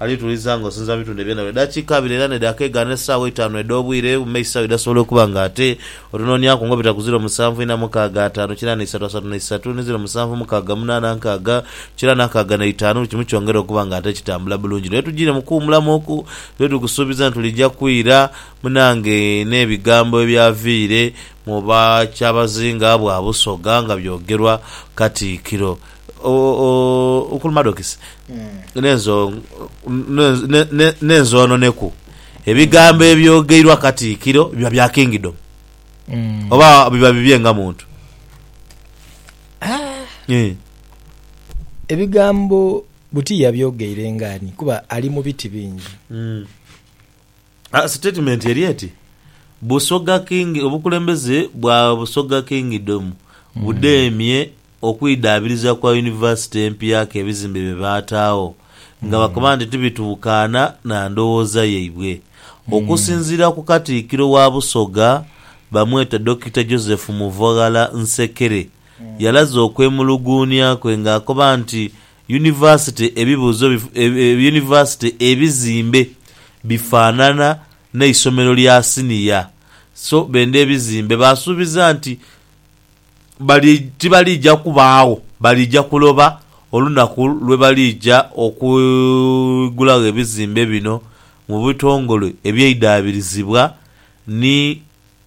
Alituliza nga osinza mu bitundhe byona bye dakiika abiri era n'edhaka egaano esaawa eitaanu edh'obwire bume isao edhasobola okuba nga ate otunooniaku nga obita ku ziro musanvu ina mukaaga ataanu kira n'eisatu asatu n'eisatu ni ziro musanvu mukaaga munaana nkaaga kira n'akaaga n'eitaanu buli kimu kyongere okuba nga ate kitambula bulungi lwe tujiire mu kuwumulamu oku lwe tuli kusuubiza nti tulija kwira munange n'ebigambo ebyaviire mu ba kyabazinga bwa Busoga nga byogerwa Katiikiro. Omukulu Madokisi, n'enzo n'enzononeku, ebigambo ebyogeirwa Katiikiro biba bya Kingdom oba biba bibye nga muntu? Ebigambo buti yabyogeire nga ani kuba ali mu biti bingi. Sitatimenti eri eti, Busoga King Obukulembeze bwa Busoga Kingdom budheemye okwidhaabiriza kwa yunivasite empya k'ebizimbe bye baataagho nga bakoba nti tibituukaana na ndowooza yaibwe. Okusinziira ku Katikkiro wa Busoga bamweta Dokita Joseph Muvaghala Nsekere yalaze okwemuluguunya kwe ng'akoba nti Yunivasite Ebibuuzo Yunivasite Ebizimbe bifaanana n'eisomero lya siniya, so benda ebizimbe baasuubiza nti bali tibaliija kubaagho baliija kuloba olunaku lwe baliija okwigulagho ebizimbe bino mu bitongole ebyeidhaabirizibwa ni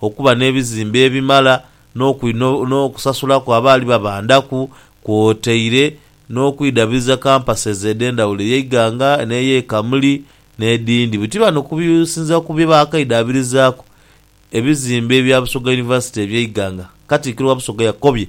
okuba n'ebizimbe ebimala n'okusasulaku abaali babandhaku kwotaire n'okwidabiriza kampasezi edh'endhawulo eya Iganga n'ey'e Kamuli n'edhindi. Buti bano okusinziira ku bye baakaidhabirizaaku ebizimbe bya Busoga University eby'e Iganga, Katikkiro wa Busoga yakobye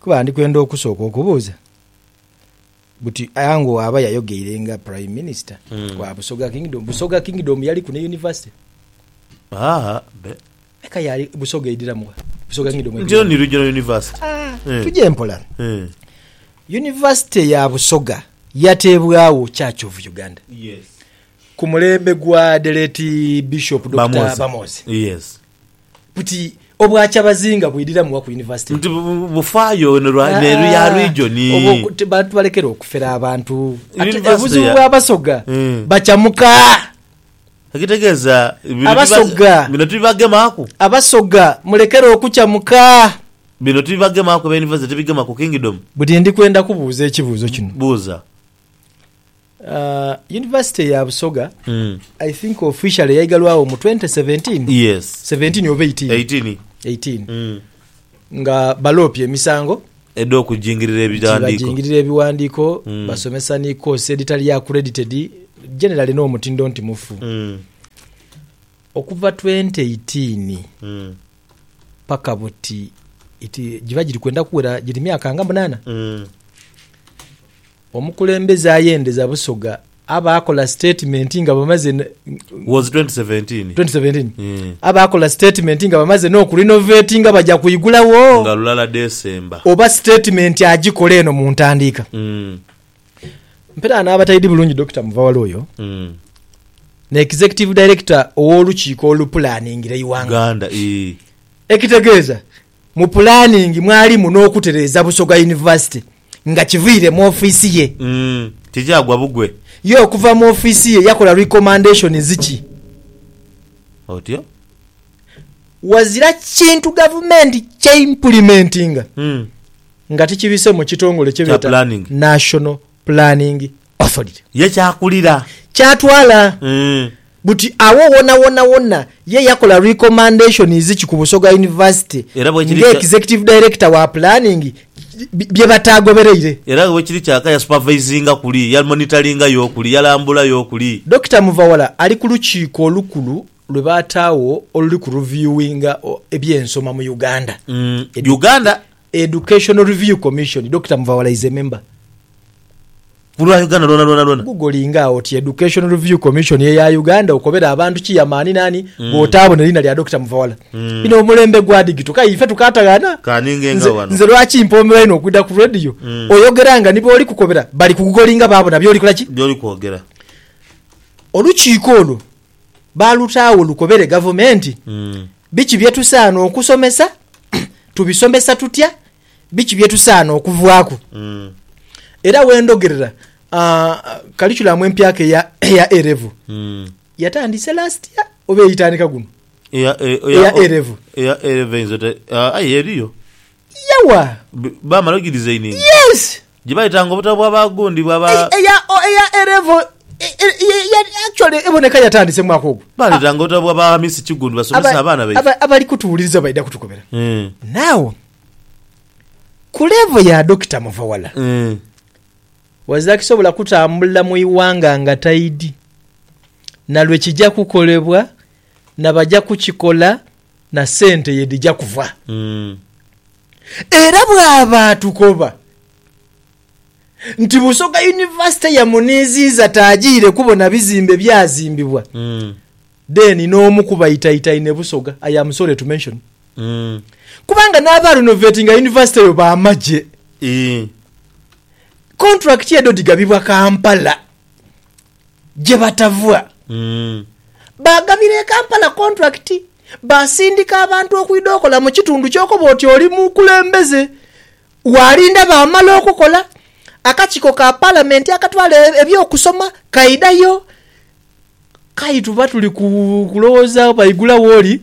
Kuba ndi kwenda okusooka okubuuza buti Ango waaba yayogeire nga Prime Minister wa Busoga Kingdom, Busoga Kingdom yaliku ne University? Haa be. Eka yaali, Busoga edhiramu wa? Busoga Kingdom Nti edhiramu? yo ni Regional University. Ah, Eh. tuje mpola. Eh. University ya Busoga yateebwawo Church of Uganda Yes. ku mulembe gwa the late Bishop Dokita Bamoze. Bamoze. Yes. Buti obwa Kyabazinga bwidiramu wa ku University? Nti bufaayo neru ya region. Bantu balekere okufera abantu. Obuzibu bwa Basoga hmm. bakyamuka. Ekitegeeza abasoga bino tubibagemaku, abasoga mulekere okukyamuka. Bino tubibagemaku, eby'university tubigemaku kingdom. Budi ndi kwenda kubuuza ekibuuzo kino. Buuza. University ya Busoga I think officially yaigalwagho mu 2017? Yes. 17 oba 18? 18. 18. Nga baloopye emisango. Edh'okujingirira ebighandiiko. Nti bajingirira ebighandiiko, basomesa ni course edhitali accredited, generally n'omutindo nti mufu. Okuva 2018 paka buti, it, giba giri kwenda kuwera, giri myaka nga munaana? Omukulembeze ayendeza Busoga aba akola sitatimenti nga bamaze n- Was 2017. 2017 Mm. aba akola sitatimenti nga bamaze n'okurinovetinga baja kwigulawo Nga lulala December. oba sitatimenti agikola eno mu ntandiika Mm. mperagho naaba taidi bulungi Dokita Muvawala oyo Mm. ne Executive Director ow'olukiiko olupulaningira eighanga Uganda. Ii. ekitegeeza Mu pulaningi mwalimu n'okutereeza Busoga Yunivasite nga kiviire mu ofiisi ye. Tijaagwa bugwe. Ye okuva mu ofiisi ye yakola recommendations ki? Otyo. Wazira kintu gavumenti kye impulimentinga nga tikibise mu kitongole kye beeta National Planning Osolire. Ye kyakulira. Kyatwala. Buti agho wonawona wona ye yakola recommendationiz ki ku Busoga University Era bwekiri nga kya. Executive Director wa Planning bye bataagobereire. Era bwekiri kyaka yasupervisinga kuli, yamonitoringa yo kuli, yalambula yo kuli. Dokita Muvawala ali ku lukiiko olukulu lwe baataagho oluli ku reviewinga eby'ensoma mu Uganda. Uganda. Educational Review Commission, Dokita Muvawala is a member. Ku lwa Uganda lwona lwona lwona. Gugolinga agho oti Educational Review Commission eya Uganda okobere abantu kiyamaani naani bw'otaabona eriina lya Dokita Muvawala. Ino omulembe gwa digito k'aye ife tukaataghana. Ka ninge nga Nze, wano. nze lwaki mpoomerwa inho okwidha ku radio, oyogera nga ni booli kukobera bali kugugolinga baabona by'oli kola ki? By'oli kwogera. Olukiiko olwo. baalutaagho lukobere gavumenti biki bye tusaana okusomesa, tubisomesa tutya, biki bye tusaana okuvaaku. Era we ndhogerera kalikulamu empyaka eya eya A-Level yatandise last year oba eitandika guno? Eya e- eya- Eya o- A-level. eya A-level eyinza ota- ah, aye eriyo yawa Bi- baamala ogidizaininga yes Gye baitanga obutabo bwa ba gundi bwa ba. Ei- eya o- eya A level e- e- ye- ye- actually eboneka yatandise mu mwaka ogwo Baletanga obutabo bwa ba Hamisi Kigundi basomese Aba- abaana baife. aba- abali kutuwuliriza baidha kutukubira Eh, now ku level ya dokita muvawala eh. wazakisobola kutambula mu iwanga nga taidi nalwe kija kukolebwa na baja kukikola na sente ye dhija kuva. Era bwaba atukoba nti Busoga Yunivasite yamuniiziiza taajiire kubona bizimbe byazimbibwa, then n'omu ku baitaitaine Busoga, I am sorry to mention, kubanga n'abarenovatinga yunivasite eyo ba magye, kontulakiti edho dhigabibwa Kampala. gye batava. Baagabira e Kampala kontulakiti, baasindika abantu okwidha okola mu kitundu ky'okoba oti oli mukulembeze. Waalinda baamala okukola, akakiiko ka Palamenti akatwala eby'okusoma kaidhayo. Kaituba tuli kulowooza baigula wooli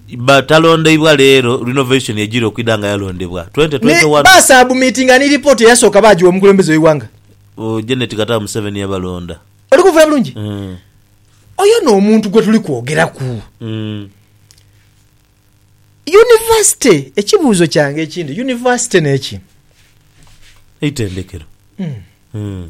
Ba talondeibwa leero, Renovation ejira okwidha nga yalondebwa twenty Ni twenty one. basabumitinga ni lipooti eyasooka baagiwa omukulembeze w'eighanga. Oh, Janet Kataha Museveni yabalonda. Oli kunfuna bulungi? Mm. Oyo n'omuntu gwe tuli kwogeraku. Mm. Yunivasite, ekibuuzo kyange ekindi, yunivasite n'eki? Eitendekero. Mm.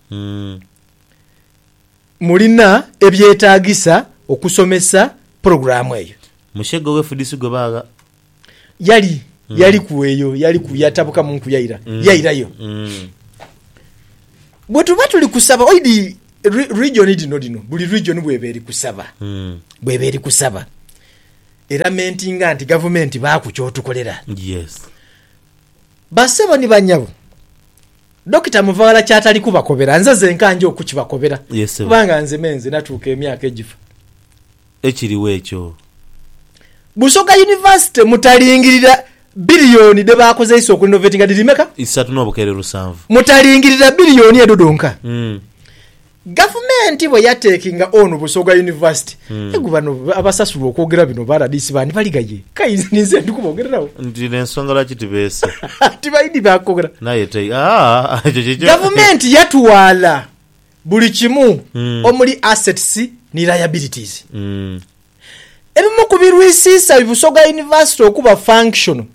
Mulina ebyetaagisa okusomesa pulogulaamu eyo? Mushega ow'efudisi gwe baagha. Yali, yaliku eyo, yaliku, yatabuka mu nku yaira, yairayo. Bwe tuba tuli kusaba, oidhi, ri, rigyoni dhino dhino, buli rigyoni bw'eba eri kusaba, bw'eba eri kusaba, eramentinga nti gavumenti baaku ky'otukolera. Yes. Bassebo ni bannyabo. Dokita Muvaghala ky'atali kubakobera nze zenka nja okukibakobera Ye ssebo. kubanga nze me nze natuuka emyaka egifa. Ekiriwo ekyo. Busoga University mutalingirira billion dhe baakozeisa okurinovatinga dhiri meka? Isatu n'obukeere lusanvu. Mutalingirira billion edho dhonka. Mm. Gavumenti bwe yateekinga onu Busoga University, egu bano abasasulwa okwogera bino ba rdc baanibaliga ye? Kai ninze ndi kubogereragho. Nti n'ensonga lwaki tibeese. Tibaidhi ba kwogera. N'aye te, aa, ekyo kikyo. Gavumenti yatwala buli kimu omuli assets ni liabilities. Ebimu ku birwisiisa Busoga University okuba functional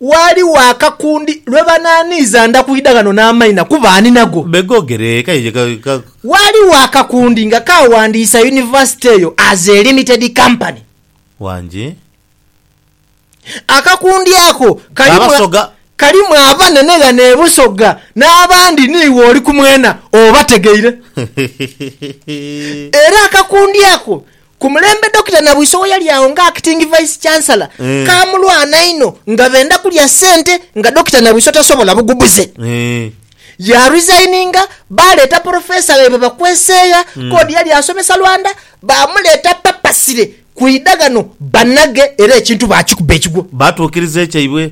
Ghaligho akakundi lwe banaaniiza nda kwidha ghano n'amaina kuba ani nago. Begoogere eka ye ka. Ghaligho akakundi nga kaawandiisa yunivasite eyo as a limited company. Wangi. Akakundi ako kalimu Abasoga. kalimu abanene ghano e Busoga n'abandi niiwe oli ku mwena obategeire. Era akakundi ako Ku mulembe Dokita Nabwiso we yali agho nga Acting Vice Chancellor, Eh. kaamulwana inho nga benda kulya ssente nga Dokita Nabwiso tasobola bugubuze. Eh. Ya resigninga, baaleeta Porofesa ghaibwe Bakweseegha, k'odi yali asomesa Lwanda, baamuleeta papasire kwidha ghano banhage era ekintu baakikuba ekigwo. Baatuukiriza ekyaibwe.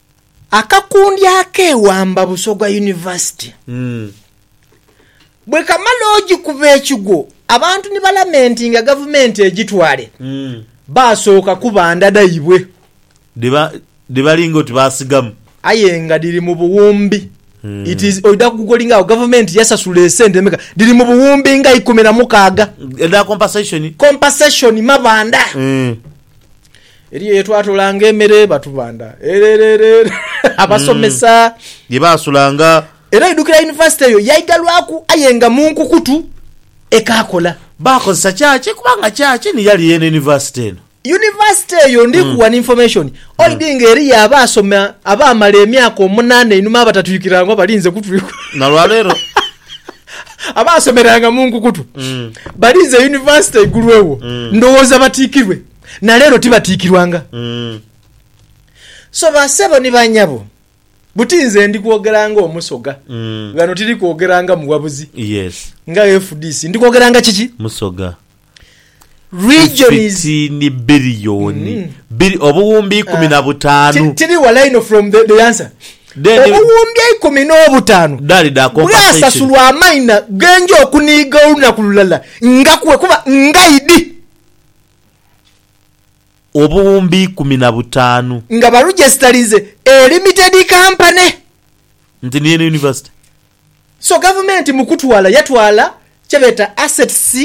Akakundi ak'ewamba Busoga University bwe kamala ogikuba ekigwo abantu ni balamentinga Gavumenti egitwale, baasooka kuba nda dhaibwe. Dhe balinga oti baasigamu. Aye nga dhiri mu buwumbi. It is, oidha kugugolinga agho, Gavumenti yasasula esente meka? Dhiri mu buwumbi nga ikumi na mukaaga. Edha compensation? Compensation mabanda. Eriyo ye twatoolanga emere, batubanda erererere abasomesa. Ye baasulanga. Era oidukira yunivasite eyo yaigalwaku aye nga mu nkukutu ekaakola. Baakozesa church kubanga church ni yali yeene yunivasite eno. Yunivasite eyo ndiku wano information oidi nga eriyo abaasoma abaamala emyaka omunaana einhuma abatatuikirira ngu abalinze kutuikwa. Na lwa leero. Abaasomeranga mu nkukutu balinze yunivasite igulwegho ndowooza batiikirwe. na leero tibatiikirwanga. So basebo ni banyabo, buti nze ndi kwogera ng'Omusoga. Ghano tiri kwogera nga muwabuzi, nga FDC. Ndi kwogera nga kiki? Musoga. Regions. Fifitiini biriyoni, biri, obuwumbi ikumi na butaanu. Tiri walai inho from the, the answer. Then. Obuwumbi eikumi n'obutaanu. Dali da compensation. Bwasasulwa amaina ge nja okuniiga olunaku lulala nga kwe kuba ngaidi. obuwumbi ikumi na butaanu. Nga balujesitalize e Limited Company. Nti niyo eno University. So gavumenti mu kutwala yatwala kyebeeta assets,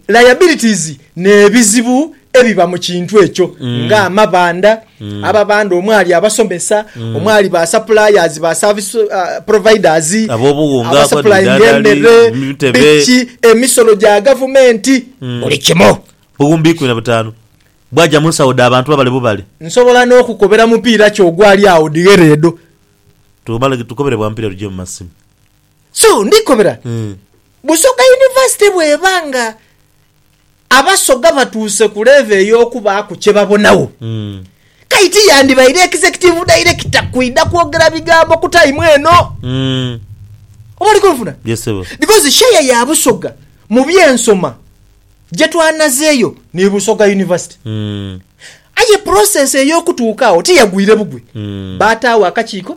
liabilities n'ebizibu ebiba mu kintu ekyo nga amabanda. Abo abandi omwali abasomesa, omwali ba suppliers, ba service ah, providers, Ab'obuwunga, abasupplyinga abadidadali, emere, emitebe. piki, emisolo gya gavumenti, buli kimu. Buwumbi ikumi na butaanu bwaja mu nsawo dha bantu babale bubale. Nsobola n'okukobera mupiira ki ogwali agho dhighere edho. Tumale tukobere bwa mupiira lugye mu masimu. So, ndhikobera, Mm. Busoga University bw'eba nga Abasoga batuuse ku leevo ey'okubaaku kye babonagho. Kayi ti yandibaire Executive Director kwidha kwogera bigambo ku time eno. Oba oli kunfuna? Yes, ssebo. Because share ya Busoga mu by'ensoma gye twanazeeyo ni Busoga University. Aye process ey'okutuuka agho ti yagwire bugwi. Baataagho akakiiko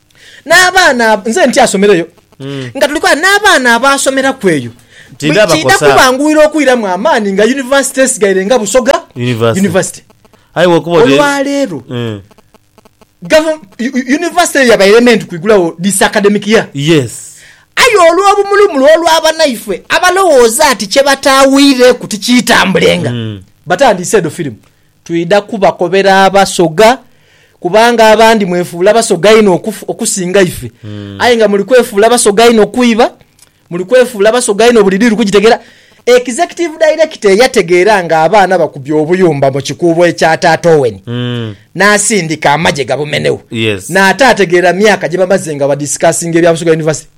N'abaana ab- nze nti asomereyo nga tuli kwaa n'abaana abaasomeraku eyo Ti bwe ndaba kiidha kosa. kubanguyira okwiramu amaani nga yunivasite esigaire nga Busoga University. University. Aye bwokuba oti- Olwaleero Eh. gavu- yu- yu- yunivasite eyo yabaire ema enti kwigulawo this academic year Yes. aye olw'obumulumulu olw'abanaife abalowooza ati kye bataawiireeku tikyitambulenga batandiise edho firimu Twidha kubakobera Abasoga, kubanga abandi mwefuula Basoga inho okusinga ife. Aye nga muli kwefuula Basoga inho kwiba, muli kwefuula Basoga inho buli diiru kugitegera. Executive Director eyategeera nga abaana bakubye obuyumba mu kikuubo ekya Taata Owen n'asindika amagye gabumenegho, n'ate ategeera myaka gyebamaze nga badiscussinga ebya Busoga University.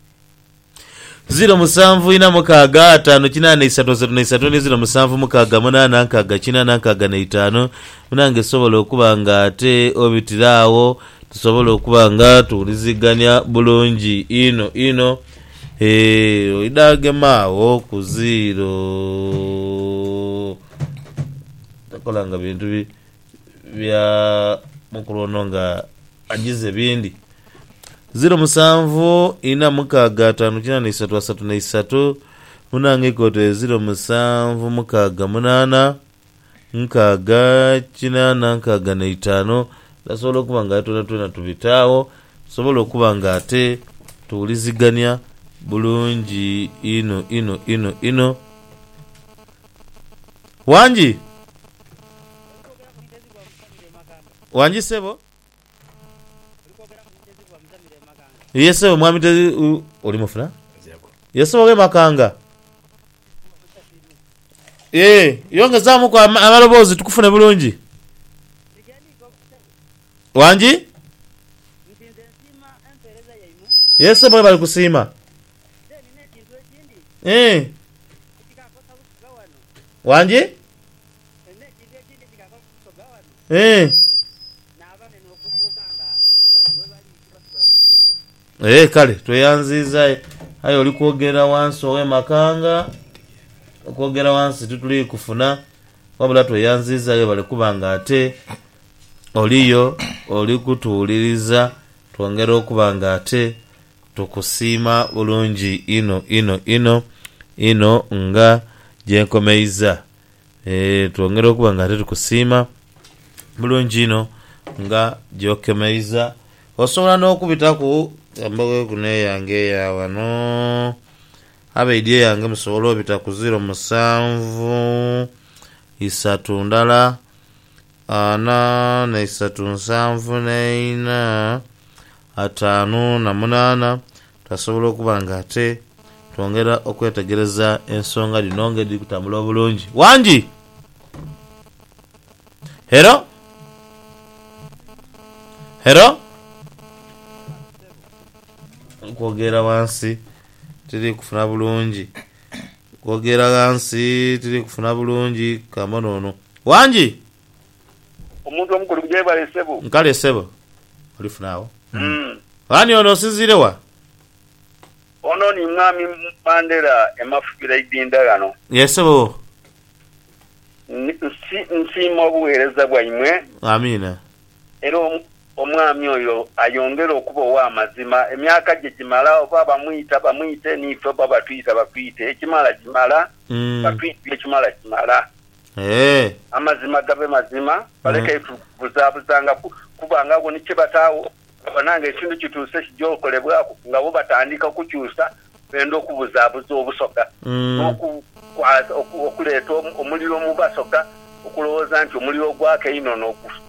Ziro musanvu ina mukaaga ataanu kinaana isatu asatu na isatu ni ziro musanvu mukaaga munaana nkaaga kinaana nkaaga na itaanu munange sobola okuba nga ate obitira agho tusobole okuba nga tuwuliziganya bulungi inho inho eeh oidha gema agho ku ziiro takola nga bintu bi. bya mukulu ono nga ajize bindi. Ziro musanvu ina mukaaga ataanu kina na isatu asatu na isatu munange ikoto eziro musanvu mukaaga munaana nkaaga kinaana nkaaga na itaanu nasobola okuba nga twena twena tubita agho tusobole okuba nga ate tuwulizigania bulungi inho inho inho inho. Wangi. Wangi sebo. Ye sebo mwami te u- oli mufuna? Ye sebo we makanga. Ye yongezamuku ama- amaloboozi tukufune bulungi. Wangi. Ye sebo bali kusiima. Eeh. Wangi? Eeh. Eeh kale tweyanziiza aye aye oli kwogerera wansi owe makanga okwogera wansi tituli kufuna wabula tweyanziiza webale kuba nga ate oliyo oli kutuwuliriza twongera okuba nga ate Tukusiima bulungi inho inho inho inho nga gyenkomeiza eeh twongera okuba nga ate tukusiima bulungi inho nga gyokemeiza osobola nokubitaku embogo kuno eyange eyaghano abaidhi eyange musobole obita ku ziro musanvu isatu ndala ana naisatu nsanvu naina ataanu na munaana, twasobola okuba nga ate twongera okwetegereza ensonga dhino ng'edhiri kutambula obulungi. Wangi! Hero? Hero? Okwogerera ghansi tiri kufuna bulungi. Okwogerera ghansi tiri kufuna bulungi. Ka mbone ono. Wangi! Omuntu omukulu Yebale ssebo. Nkale ssebo. Olifuna agho. Ani ono? Osinziire wa? Ono ni Mwami Mandela e Mafubira Idinda ghano. Yee ssebo. Nsi, nsiima obugheereza bwaimwe. Amiina. Era Omwami oyo ayongere okuba ow'amazima. Emyaka gye gimala, oba bamwita bamwite, n'ife oba batwita batwite, ekimala kimala, batwite ekimala kimala. Eeh. Amazima gabe mazima, baleke tubuzaabuzaangaku kuba nga agho ni kye bataagho. Babona nga ekintu kituuse kija okolebwaku nga bo batandika okukyusa, benda okubuzaabuza obusoga n'okukwata, okuleeta omuliro mu basoga okulowooza nti omuliro ogwaka einho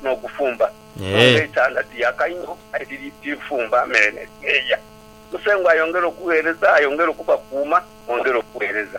n'ogufumba. So nga ekyanda tiyaka inho aye tirifumba mere ne tineeya. Musengwa ayongere okugheereza, ayongere okubakuuma, mwongere okuweereza.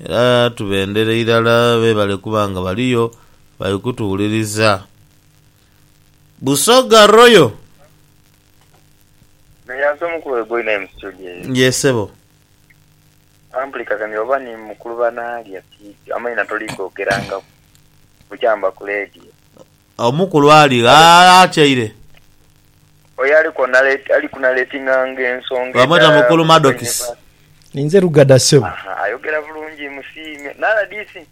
Era tubendhere irala beebale kuba nga baliyo bali kutuwuliriza. Busoga Royal. Meyanse omukulu we boina emu studio eyo. Yee sebo. Amplikaganira oba ni mukulu banaalya tiidhi amaina toli gogerangaku bukya mba ku leediyo. Agho omukulu ali gha atyaire. Oyo ali kunaletinganga ensonga edha. Bamweta Mukulu Madokisi. Ninze Lugada sebo. Aha, ayogera bulungi musiime. Naladisi?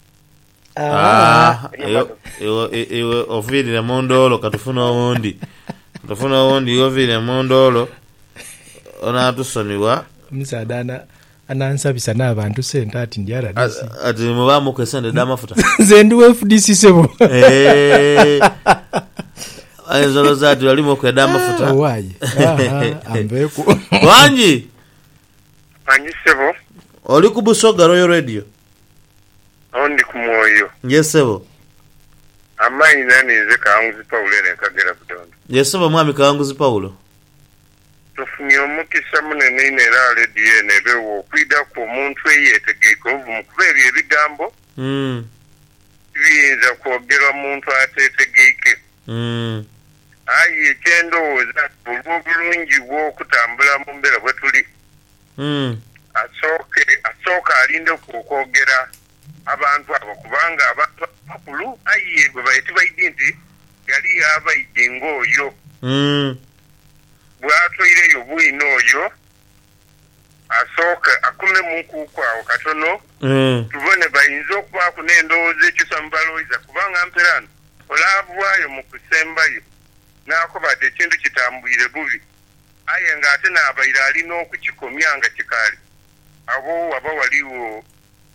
Aah, iwe oviirire mu ndoolo ka tufune owundi. Ka tufune owundi iwe oviirire mu ndoolo onaatusonibwa. Omusaadha Anansabisa n'abantu sente ati ndi rdc. Ati ni mubaamuku esente edh'amafuta. Nze ndi wa fdc sebo. Eehh. Ayinza olowooza ati bali muku edh'amafuta. Owaye. Aha, anveeku. Wangi! Wangi ssebo. Oli ku Busoga Royal Radio? Awo ndi ku Mwoyo. Yes ssebo. Amaina ninze Kawanguzi Paulo eno e Kagera Budondo. Yes ssebo mwami Kawanguzi Paulo. Tufunye omukisa munene inho era lediyo eno ebegho okwidhaku omuntu eyeetegeike obuvumu kuba ebyo ebigambo tibiyinza kwogerwa muntu ateetegeike. Aye kye ndowooza nti olw'obulungi bw'okutambula mu mbeera bwe tuli, asooke asooke alindeku okwogera abantu abo kubanga abantu abo bakulu aye bwe baidhi nti ghaliyo abaidhi ng'oyo. bw'atoireyo bwino oyo asooke akume mu nkuuku agho katono tubone. Bainza okubaaku n'endhoghoza ekyusa mu baloiza kubanga mperaano ole avaayo mu kusembayo n'akoba ati ekintu kitambwire bubi aye ng'ate n'abaire ali n'okukikomya nga kikaali agho, ghaba ghaligho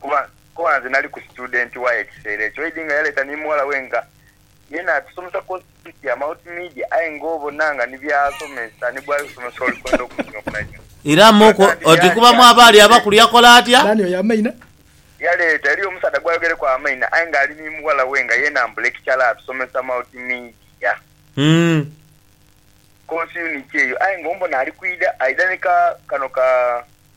kuba kuba nze nali ku situdenti waye ekiseera ekyo Eddy nga yaleeta ni mughala we nga yena atusomesa kosi dhiti ya Multimedia aye nga obona nga ni by'asomesa ni gwali kusomesa oli kwenda okunyooma inho. Era Muku Ghazanti oti kuba yaagya mwaba ali abakulu yaleeta. yakola atya? Naani oyo Amaina? Yaleeta. Eriyo omusaadha gw'ayogereku Amaina aye nga ali ni mughala we nga yena mbu lekichala atusomesa Multimedia Hum. kosi yuniti eyo aye nga ombona ali kwidha aidha ni ka kano ka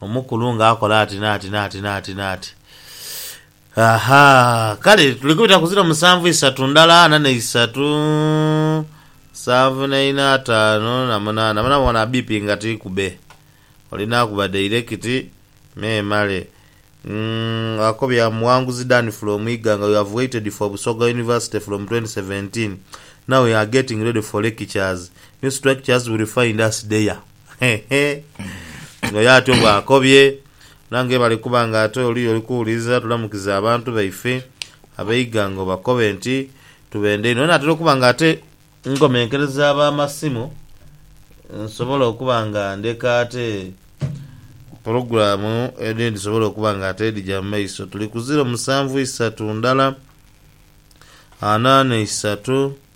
Omukulu nga akola ati n'ati n'ati n'ati n'ati. Aha! Kale tuli kubita ku ziro musanvu, isatu ndala, ana n'eisatu, nsanvu n'eina, ataanu na munaana. Bona bona bbiipi nga tiikube. Olina kuba dairekiti, memale. Umm, akobya Muwanguzi Dan from Iganga, You have waited for Busoga University from twenty seventeen. Now we are getting ready for lectures. New structures will find us there. Nga ye atyo bw'akobye. Era nga ye bali kuba nga ate oli y'oli kuwuliriza, tulamukize abantu baife ab'eighanga obakobe nti, Tubenda inho. Naatera okuba nga ate nkomenkereza ab'amasimu, nsobole okuba nga ndeka ate pulogulaamu edhindhi dhisobole okuba nga ate dhija mu maiso. Tuli ku ziro musanvu isatu ndala, ana n'eisatu.